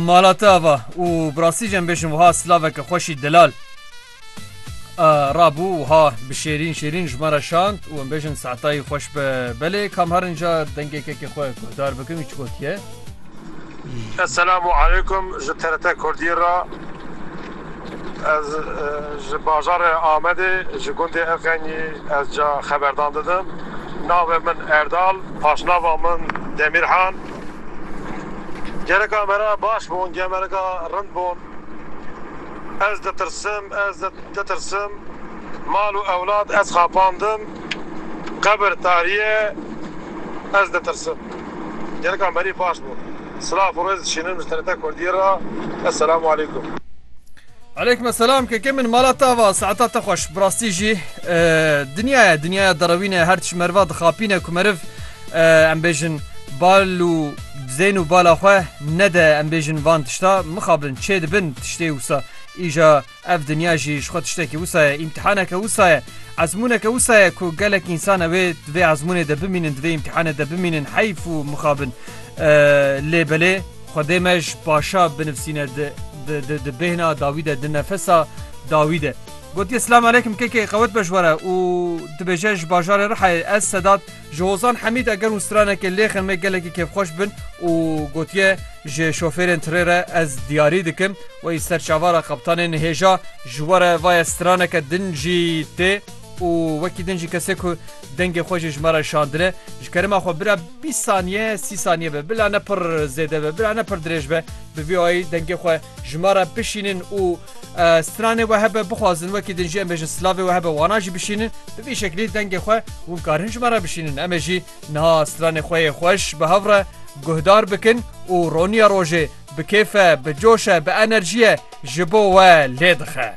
Mala te ava û bi rastî jî em bêjin wiha silaveke xweşî delal rabû wiha bi şêrîn şêrîn ji me re şand û em bêjin saetayî xweş be belê kam herin ca dengêkekê xwe guhdar bikin wî çi gotiye. Esselamu aleykum ji TRT Kurdî re ez ji bajarê Amedê ji gundê Efxenî ez ca xeberdan didim navê min Erdal paşnava min Demîrhan. Gereka me re baş bûn, gemereka rind bûn. Ez ditirsim, ez ditirsim. Mal û ewlad ez xapandim. Qebir tariye, ez ditirsim. Gereka merî baş bûn. Silav û rêz dişînim ji TRT Kurdî re. Esselamu aleykum. Aleykum esselam keke min mala te ava saeta te xweş bi rastî jî dinyaya dinyaya derewîne her tişt meriva dixapîne ku meriv Em bêjin bal û dizên û bala xwe nede em bêjin van tişta mixabin çê dibin tiştê wisa îja ev dinya jî ji xwe tiştekî wisa ye îmtihaneke wisa ye ezmûneke wisa ye ku gelek însan ew ê di vê ezmûnê de bimînin di vê îmtihanê de bimînin heyf û mixabin lê belê xwedê me ji paşa binivsîne di di di bêhna dawî de di nefesa dawî de gotiye silam aleykum kekê qewet be ji we re û dibêje ji bajarê Rihayê ez Sedat Ji Hozan Hemîd eger hûn stranekê lêxin me gelekî kêfxweş bin û gotiye ji şofêrên tirê re ez diyarî dikim wê yî ser çavara qeptanê nihêja ji we re vaye straneke din jî tê û wekî din jî kesê ku dengê xwe jî ji me re şandine ji kerema xwe bira bîst saniye sî saniye be bila ne pir zêde be bila ne pir dirêj be bi vî ayî dengê xwe Ji me re bişînin û stranê we hebe bixwazin wekî din jî em ê ji slavê we hebe wana jî bişînin bi vî şekilî dengê xwe hûn karin ji me re bişînin em ê jî niha stranê xwe yê xweş bi hev re guhdar bikin û roniya rojê bi kêfe bi coşe bi enerjiye ji bo we lê dixe.